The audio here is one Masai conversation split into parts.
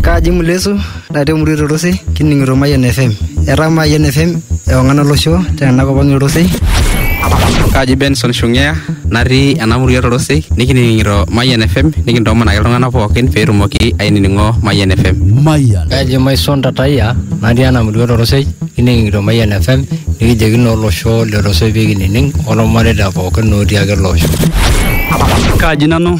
Kaji Mulesu natii emurua e Torosei kining'ito Mayian FM. Etaa Mayian FM ewang'an olosho tena kop ang' e Torosei. Kaji Benson Shungea natii ena murua e Torosei nikining'ito Mayian FM nikintoomonaki iltung'anak pookin pee etumoki ainining'o Mayian FM. Mayan. Kaji Maison Tataya natii ena murua e Torosei kining'ito Mayian FM nikijoki naa olosho le Torosei pee kinining' olmareita pookin otii ake ele osho. Kaji nanu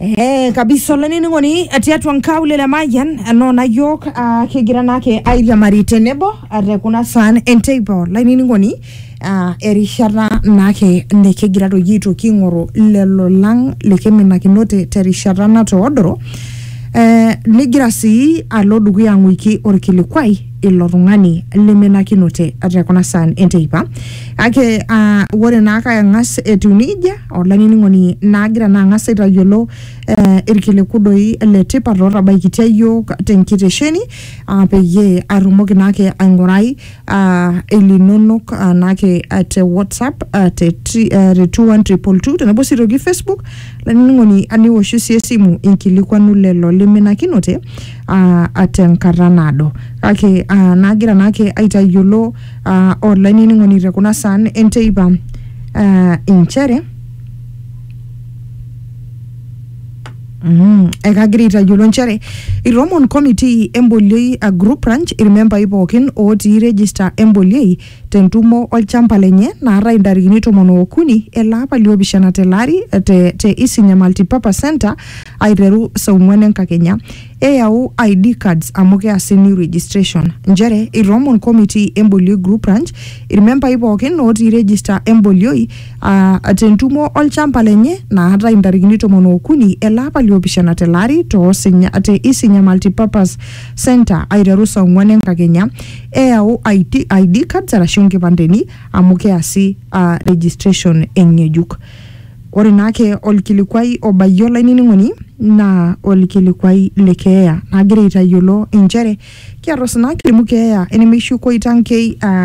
Eh, kabisa olainining'oni tiatua nkaulele emayian enoona yiok ah, kigira naake airiamari tenebo ah, te kuna saan enteipa olainining'oni ah, erishata naake nikigira doi aitoki aing'oru lelo lang likiminakinote terishata natoodoro eh, nigira sii alo dukuya ang'uiki orkilikwai ilo tung'ani liminakinote te kuna saan enteipa kake ah, ore naake ang'as etiu nejia olainining'oni naagira naa ang'as aitayiolo eh, irkiliku doi le tipat ootabaikitia iyiook tenkitesheni ah, peyie atumoki naake aing'urai ah, ilinonok ah, naake ah, te whatsapp ah, te tri- eh, te 21222 tenebo sii toki facebook lainining'oni ah, niwoshu sii esimu inkilikuanu lelo liminakinote ah, ah, tenkata naado kake ah, naagira naake aitayiolo uh, olainining'oni te kuna saan enteipa uh, inchere Mm, ekagira aitayiolo nchere iromon committee emboliei a group ranch irmembai pookin ootii register emboliei tentumo olchamba lenye naata intarikini tomon ookuni ele apa liopishana tele ari te, te isinya multipurpose center aiteru saa ong'uan enkakenya Eyau ID cards amu keasi new registration. Nchere eitoomon komitii embolioi group ranch ilmembai pookin ootii regista embolioi aa te ntumo olchamba lenye naatae intarikini tomon ookuni ele apa liopishana tele ari too Sinya te Isinya Multipurpose Centre aiteru saa ong'uan enkakenya. Eyau IT, ID cards arashu inkipandeni amu keasi aa registration eng'ejuk. Ore naa ake olkilikuai obayie olainining'oni naa olkilikuai le keeya. Nagira aitayiolo inchere kiata osina kilimu keeya enemeishu koitankei aa